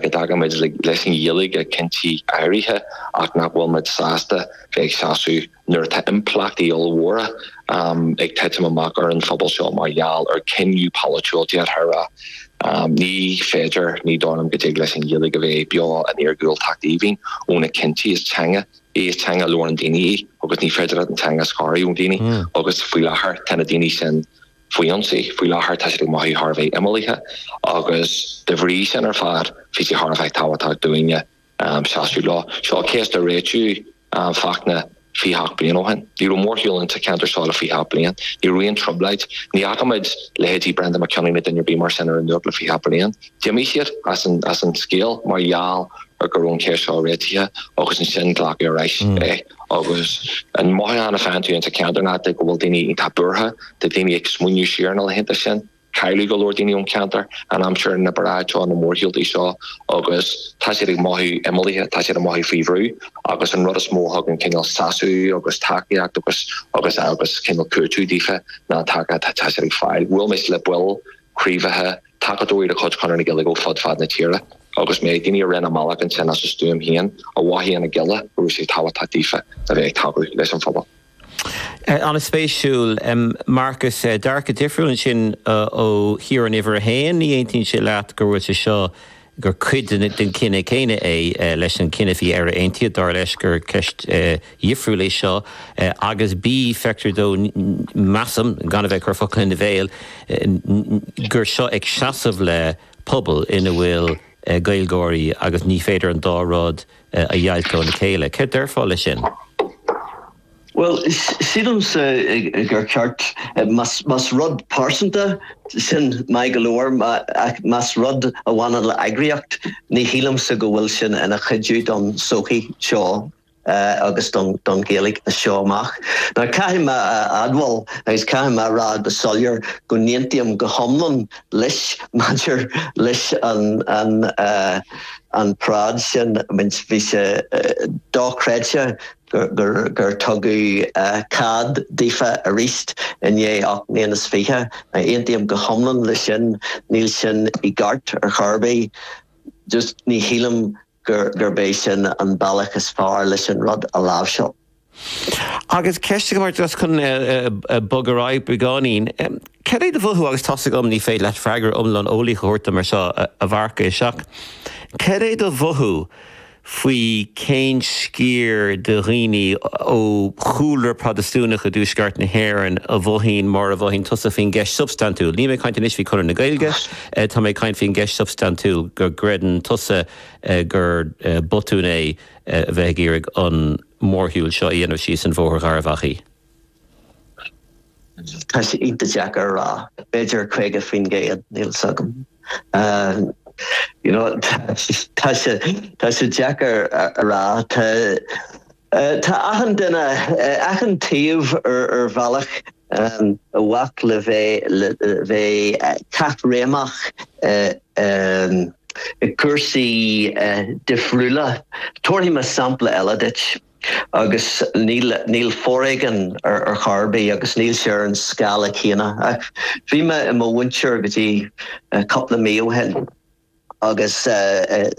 go dtagann muid leis an Ghaeilge i gcinntí áirithe ach nach bhfuil muid sásta bheith ag seasamh nuair atá impleachtaí ollmhóra ag titim amach ar an phobal seo mar gheall ar chinneadh polaitiúil, déarfá rá. Ní féidir, ní dóigh liom, go dtig leis an Ghaeilge a bheith beo in iargúltacht aoibhinn ó na cinntí. Is teanga í, is teanga a labhrann daoine í agus ní féidir leat an teanga a scaradh ó dhaoine agus faoi láthair tá na daoine sin, Faoi ionsaí, faoi láthair tá siad ag mothú thar a bheith imeallaithe agus de bhrí sin ar fad bhí sé thar a bheith tábhachtach dúinne seasamh leo. Seo cás a réitíodh Fachtna 28 bliain ó shin. Ní raibh mórshiúl ins an cheantar seo le 28 bliain. Ní raibh aon trioblóid. Ní fhaca muid leithéidí Brendan Mac Cionnaith ná duine ar bith mar sin ar an nuacht le 28 bliain. D'imigh siad as an scéal mar gheall ar go raibh an cheist seo réitithe agus ansin glacadh ar ais é. Agus an mothúchán a faigheann tú ins an cheantar ná go bhfuil daoine iontach buartha, tá daoine ag smaoineamh siar ar na laethanta sin, cailleadh go leor daoine ón cheantar in aimsir na bparáid seo, na mórshiúlta seo agus tá siad ag mothú imeallaithe, tá siad ag mothú faoi bhrú agus an rud is mó a thugann cineál sásamh agus tacaíocht agus agus agus cineál cúiteamh daofa ná an tacaíocht atá siad ag fáil. Bhuail mise le baill craobhacha, tacadóirí de chuid Chonradh na Gaeilge ó fud fad na tíre agus sea, daoine a rinne a mbealach ansin as a stuaim féin, a mhothaigh ón Ghaeilge go raibh sé tábhachtach daofa a bheith ag tacú leis an phobal. An-spéisiúil. Marcus, dearcadh difriúil ansin ó Chiarán, uimhir a haon, ní aontaíonn sé leat go bhfuil sé seo gur cuid den chinneadh céanna é leis an gcinneadh faoi Éire Aontaithe, dar leis gur ceist dhifriúil é seo, agus, ii, feictear dó, measaim, gan a bheith ag cur focal ina bhéal, gur seo ag seasamh le pobal ina bhfuil Gaeilgeoirí agus ní féidir an dá rud a dheighilt óna chéile. Céard déarfá leis sin? Bhuel, sílimse gur ceart, más rud pearsanta, sin maith go leor, ach más rud a bhaineann le heagraíocht, ní shílimse go bhfuil sin ina chuidiú don sochaí seo agus don Ghaeilge as seo amach. Now, caithfidh mé a admháil agus caithfidh mé a rá go soiléir go n-aontaím go hiomlán leis maidir leis an an an paráid sin, I mean bhí sé dochreidte. gur tugadh cead daofa arís i ndiaidh ocht mbliana is fiche. Aontaím go hiomlán leis sin. Níl sin i gceart ar chor ar bith. Just ní shílim gurb é sin an bealach is fearr leis an rud a láimhseáil. Agus ceist agam ort, just chun bogadh ar aghaidh beagáinín. Cad é do mhothú, agus tá's agam ní féidir leat freagra iomlán eolaíoch a thabhairt dom air seo, a Mharcais, ach cad é do mhothú faoi, cén sciar de dhaoine ó chúlra Protastúnach i dTuaisceart na hÉireann a mhothaíonn mar a mhothaíonn tusa faoin gceist shubstaintiúil, níl mé ag caint anois faoi Chonradh na Gaeilge, tá mé ag caint faoin gceist shubstaintiúil go gcreideann tusa gur botún é a bheith ag iarraidh an mórshiúl seo a dhéanamh síos Bhóthar Gharbhachaidh. Tá sé iontach deacair a rá, b'fhéidir 50%, níl fhios agam. You know, tá sé deacair a rá. Tá, tá achan duine, achan taobh ar bhealach i bhfách le bheith caithréimeach i gcúrsaí difriúla. Tabharfaidh mé sampla eile duit. Agus níl, níl foréigean ar chor ar bith agus níl sé ar an scála céanna. Ach bhí mé i mo mhúinteoir go dtí cúpla mí ó shin agus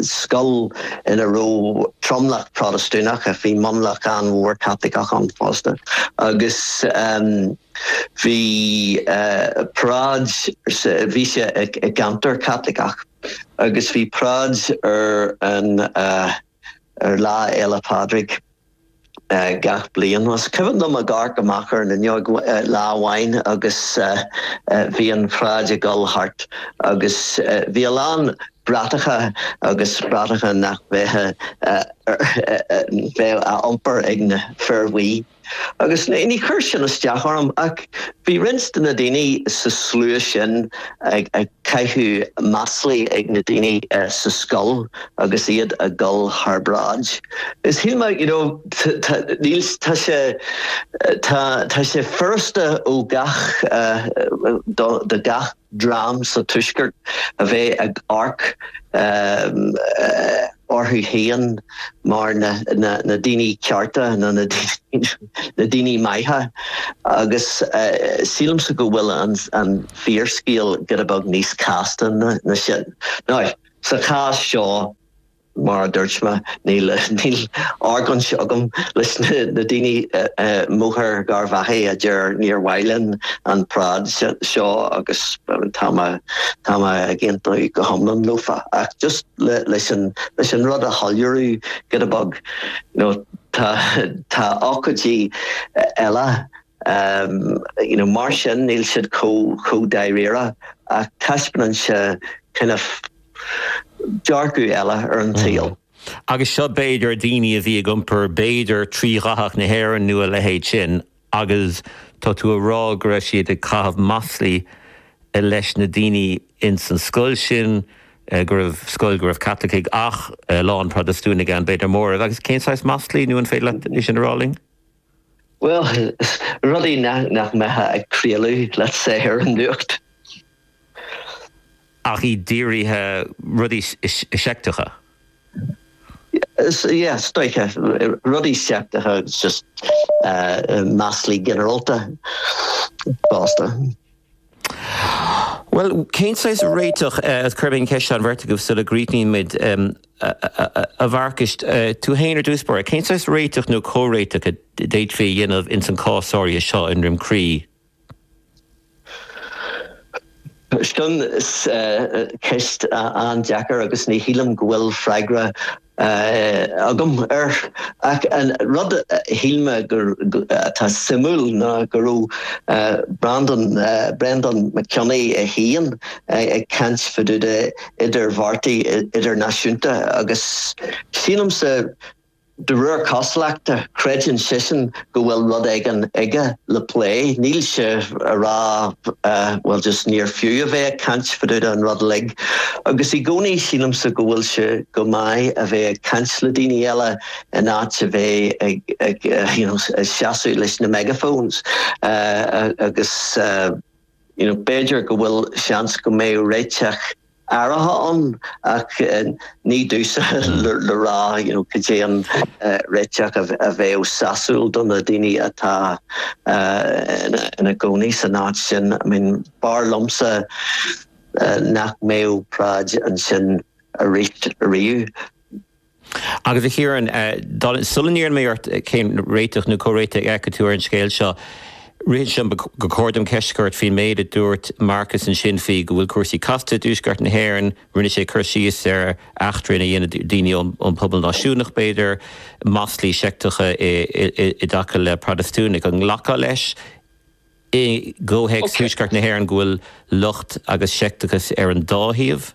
scoil ina raibh tromlach Protastúnach ach bhí mionlach an-mhór Caitliceach ann fosta. Agus bhí paráid, bhí sé i gceantar Caitliceach, agus bhí paráid ar an, ar Lá Fhéile Pádraig gach bliain. Is cuimhin liom ag amharc amach ar an fhuinneog lá amháin agus bhí an pharáid ag dul thart agus bhí a lán bratacha agus bratacha nach bheadh á iompar ag na fir bhuí. Agus ní chuir sin isteach orm, ach bhí roinnt de na daoine sa slua sin ag caitheamh maslaí ag na daoine sa scoil agus iad a dhul thar bráid. Is shíl mé, you know, tá, níl, tá sé, tá, tá sé furasta ó gach, do gach, dream sa Tuaisceart a bheith ag amharc orthu féin mar na daoine cearta nó na daoine maithe agus sílimse go bhfuil an fíorscéal giota beag níos casta ná sin. Nó sa chás seo, Mar a dúirt mé, níl, níl argóint agam leis na daoine i mBóthar Gharbhachaidh a deir níor mhaith linn an pharáid seo agus tá mé, tá mé ag aontú go hiomlán leofa. Ach just leis an rud a shoiléiriú giota beag, nó tá, tá ócáidí eile Mar sin, níl siad chomh dáiríre ach taispeánann sé dearcadh eile ar an tsaol. Agus seo b'fhéidir na daoine a bhí ag iompar b'fhéidir trídhathach na hÉireann nó a leithéid sin agus tá tú a rá go raibh siad ag caitheamh maslaí leis na daoine ins an scoil sin, go raibh scoil go raibh Caitlicigh ach a lán Protastúnaigh ann, b'fhéidir móramh, agus cén saghas maslaí nó an féidir leat é sin a rá linn? bhuel, rudaí nach mbeifeá ag craoladh, let's say, ar an nuacht. ach iad dírithe, rudaí seicteacha? yeah, is dóiche, rudaí seicteacha agus just maslaí ginearalta fosta. Bhuel, cén saghas réiteach cuirfidh mé an cheist seo ar an bheirt agaibh sula gcríochnaíonn muid? A Mharcuis, tú fhéin ar dtús, b'fhéidir, cén saghas réiteach nó comhréiteach a d'fhéadfaí a dhéanamh ins an cás áirithe seo i nDroim Crí? Sin ceist an-deacair agus ní shílim go bhfuil freagra. agam air, ach an rud a shíl mé atá suimiúil ná go raibh Breandán Breandán Mac Cionnaith é féin ag caint fadúda idirbheartaithe idirnáisiúnta agus sílimse de réir cosúlachta creideann seisean go bhfuil rud éigin aige le plé. Níl sé a rá bhuel just níor fiú a bheith ag caint fadúda an rud uilig agus i gcónaí sílimse go bhfuil sé go maith a bheith ag caint le daoine eile in áit a bheith ag ag you know seasamh leis na megaphones agus you know b'fhéidir go bhfuil seans go mbeidh réiteach áirithe ann ach ní domhsa le rá you know cad é an réiteach a bheadh sásúil do na daoine atá ina gcónaí san áit sin. I mean b'fhearr liomsa nach mbeadh paráid ansin arís riamh. Agus, a Chiaráin, sula n-iarrfaidh mé ort cén réiteach nó comhréiteach a fheiceann tú ar an scéal seo, ritheann sé liom gur chóir dom ceist a chur ort faoin méid a dúirt Marcus ansin faoi go bhfuil cúrsaí casta i dTuaisceart na hÉireann. Rinne sé cur síos ar eachtraí a dhéanann daoine ón bpobal náisiúnach, b'fhéidir, maslaí seicteacha i dtaca le Protastúnaigh. An nglacfá leis i gcomhthéacs Thuaisceart na hÉireann go bhfuil locht agus seicteachas ar an dá thaobh?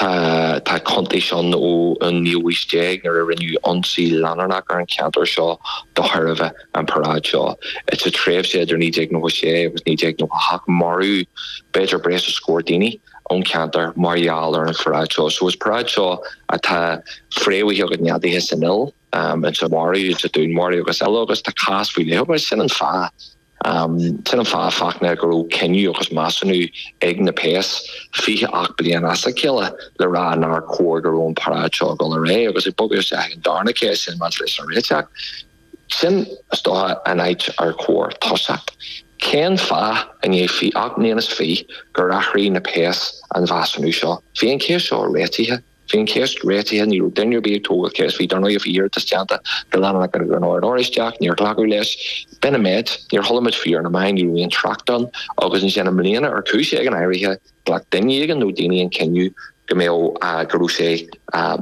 Tá cuntais ann ón naoú haois déag nuair a rinneadh ionsaí leanúnach ar an cheantar seo de thairbhe an paráid seo. Sa tréimhse idir 1996 agus 1998 maraíodh b'fhéidir breis is scór daoine ón cheantar mar gheall ar an pharáid seo. So is paráid seo atá fréamhaithe agus neadaithe san fhuil. in Dunmurry, i nDún Muirígh agus eile agus tá cás faoi leith agat. Sin an fáth, sin an fáth Fachtna go raibh cinneadh agus measúnú ag na péas fiche ocht bliain as a chéile le rá nár chóir go raibh an paráid seo ag dul ar aghaidh agus ag bogadh isteach ag an darna ceist sin maidir leis an réiteach sin. Is dócha an áit ar chóir tosú. Cén fáth i ndiaidh ocht mbliana is fiche gur athraigh na péas an mheasúnú seo? Bhí an cheist seo réitithe. Bhí an cheist réitithe, ní raibh duine ar bith ag tógáil ceist faoi. Dar ndóigh, bhí iarratas déanta go leanúnach ag an Ord Oráisteach, níor glacadh leis. B'in an méid. Níor chuala muid faoi ar na meáin, ní raibh aon trácht ann. Agus ansin, i mbliana, ar chúis éigin áirithe, ghlac duine éigin nó daoine an cinneadh go mbeadh, go raibh sé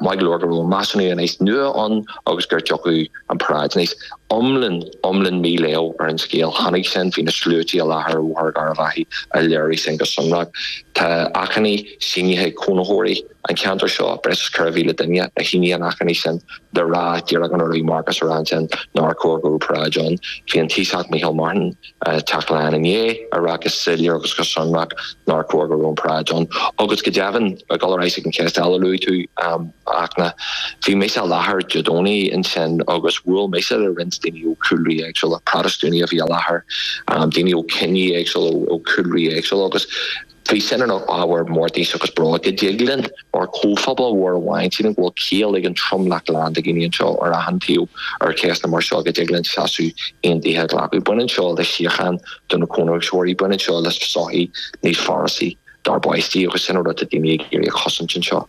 maith go leor go raibh an measúnú anois nua ann agus go dtiocfadh an paráid aníos. Iomlán, iomlán mí-léamh ar an scéal. Chonaic sinn, bhí na sluaite i láthair ar Bhóthar Gharbh Achaidh a léirigh sin go sonrach. Tá achainí. sínithe ag cónaitheoirí an cheantair seo, breis is 4,000 duine a shínigh an achainí sin le rá díreach an rud a bhí Marcus ag rá ansin nár chóir go raibh paráid ann. Bhí an Taoiseach Micheál Martin teacht leath i ndiaidh a rá go soiléir agus go sonrach nár chóir go raibh an paráid ann agus go deimhin, le dul ar ais ag an cheist eile a luaigh tú, a Fhachtna, bhí mise i láthair Dé Domhnaigh ansin agus bhuail mise le roinnt daoine ó chúlraí éagsúla, Protastúnaigh a bhí i láthair, daoine ó chiní éagsúla, ó chúlraí éagsúla agus. Bhí sin ina ábhar mórtais agus bróid go dtig linn mar chomhphobal mhór a mhaíomh ansin go bhfuil ciall ag an tromlach glan de dhaoine anseo ar achan taobh ar cheisteanna mar seo go dtig linn seasamh aontaithe a ghlacadh. Baineann seo le síocháin do na cónaitheoirí. Baineann seo le sochaí níos forasaí dár bpáistí agus sin an rud atá daoine ag iarraidh a chosaint anseo.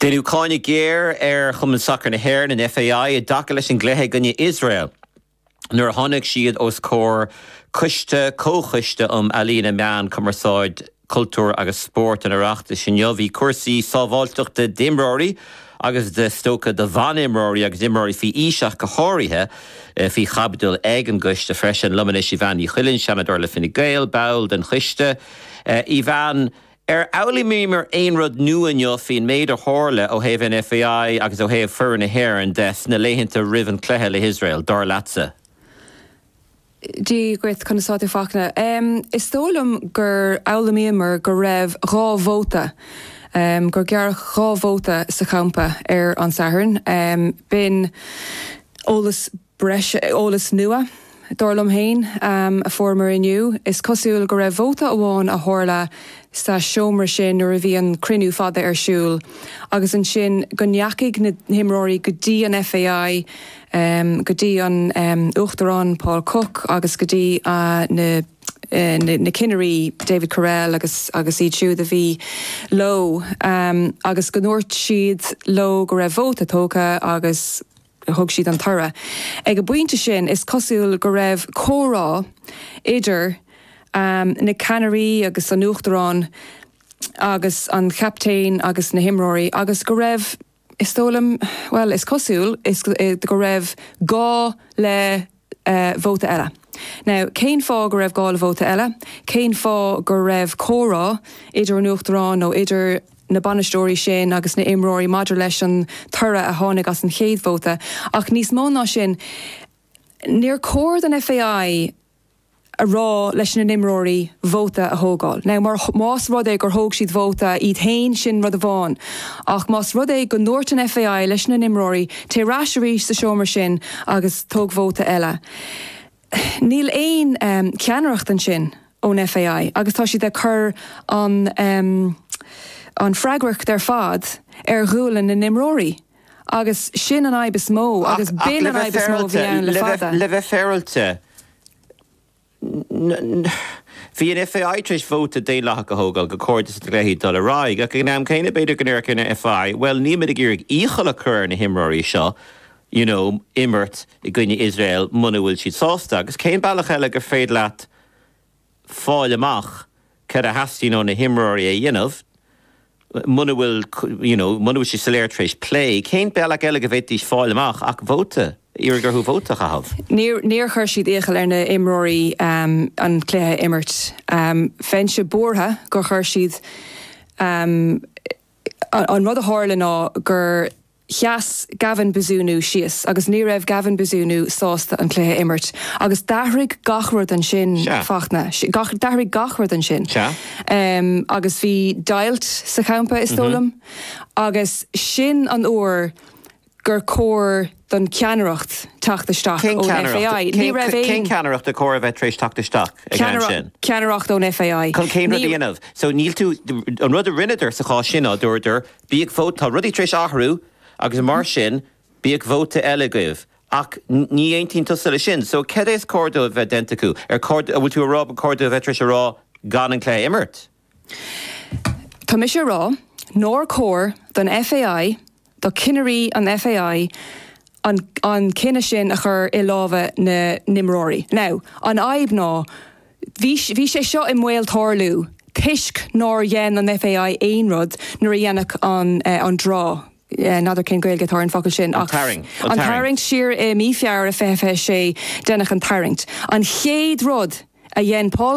Deineadh cáineadh géar ar Chumann Sacair na hÉireann, an FAI, i dtaca leis an gcluiche i gcoinne Iosrael nuair a tháinig siad os comhair coiste Comhchoiste um Ealaíona, Meáin, Cumarsáid, Cultúr agus Spórt an Oireachtais inniu. Bhí cúrsaí sábháilteachta d'imreoirí agus is dócha do bhan-imreoirí agus imreoirí faoi aois ach go háirithe, faoi chaibidil ag an gcoiste freisin. Liom anois Evanne Ní Chuilinn, Seanadóir le Fine Gael, ball den choiste Evanne. Ar fhoghlaimíomar aon rud nua inniu faoin méid a tharla ó thaobh an FAI agus ó thaobh foireann na hÉireann de sna laethanta roimh an cluiche le hIosrael, dar leatsa? Dia dhuit, conas atá tú Fachtna? Is dóigh liom gur fhoghlaimíomar go raibh dhá vóta, gur gearradh dhá vóta sa champa ar an Satharn. B'in eolas. breis eolas nua, dar liom féin, a fuaireamar inniu. Is cosúil go raibh vóta amháin a tharla sa seomra sin nuair a bhí an cruinniú fada ar siúl agus ansin go ndeachaigh na himreoirí go dtí an FAI, go dtí an Uachtarán Paul Cooke agus go dtí na ceannairí David Courell agus iad siúd a bhí leo agus go ndúirt siad leo go raibh vóta tógtha agus thug siad an toradh. Ag an bpointe sin is cosúil go raibh comhrá idir na ceannairí agus an Uachtarán agus an captaen agus na himreoirí agus go raibh, is dóigh liom, bhuel, is cosúil go raibh gá le. vóta eile? Now, cén fáth go raibh gá le vóta eile? Cén fáth go raibh comhrá idir an Uachtarán nó idir na bainisteoirí sin agus na imreoirí maidir leis an toradh a tháinig as an chéad vóta? Ach níos mó ná sin, níor chóir don FAI. a rá leis na n-imreoirí vóta a thógáil. Now mar, más rud é gur thóg siad vóta iad féin sin rud amháin ach más rud é go ndúirt an FAI leis na n-imreoirí téigh ar ais arís sa seomra sin agus tóg vóta eile níl aon cheannaireacht ansin ón FAI agus tá siad ag cur an an freagracht ar fad ar ghualainn na n-imreoirí agus sin an fhadhb is mó agus b'in an fhadhb is mó a bhí ann le fada. Le bheith féaráilte Bhí an FAI tar éis vóta daonlathach a thógáil go gcóir don chluiche dul ar aghaidh, ach ag an am céanna b'fhéidir go ndéarfadh an FAI, bhuel, níl muid ag iarraidh iachall a chur ar na himreoirí seo you know imirt i gcoinne Iosrael muna bhfuil siad sásta, agus cén bealach eile gur féidir leat fáil amach céard a theastaíonn ó na himreoirí a dhéanamh, muna bhfuil, you know, muna bhfuil sé soiléir tar éis plé, cén bealach eile go bhféadfaidís fáil amach ach vóta, iarraidh orthu vóta a chaitheamh? Níor chuir siad iachall ar na imreoirí an cluiche a imirt. Bheinnse buartha gur chuir siad, an rud a tharla ná gur, sheas Gavin Bazunu síos agus ní raibh Gavin Bazunu sásta an cluiche a imirt agus d'athraigh gach rud ansin Sea. Fachtna, gach, d'athraigh gach rud ansin Sea. em agus bhí deighilt sa champa is dóigh liom agus sin an uair gur chóir don cheannaireacht teacht isteach Cén ón ceannaireacht, FAI. Ní raibh cén, cén aon ceannaireacht a cóir a bheith tar éis teacht isteach ag am ceannaireacht, sin? ceannaireacht ón FAI. Chun cén rud a Ní- dhéanamh? So níl tú, an rud a rinneadar sa chás sin ná dúradar, Bíodh vóta, tá rudaí tar éis athrú agus mar sin bíodh vóta eile agaibh. Ach ní aontaíonn tusa leis sin, so cad é is cóir dóibh a bheith déanta acu? Ar, an bhfuil tú ag rá ba chóir dóibh a bheith tar éis a rá gan an cluiche a imirt? Tá mise ag rá nár cóir don FAI, do cinnirí an FAI an an cinneadh sin a chur i lámha na n-imreoirí. Now an fhadhb ná, Bhí sé seo i mbaol tarlú toisc nár dhein an FAI aon rud nuair a deineadh an an draw, n'fheadar cén Ghaeilge atá ar an bhfocal sin, ach an tarraingt siar i mí Feabhra 2026, deineadh an tarraingt. An chéad rud a dhein Paul.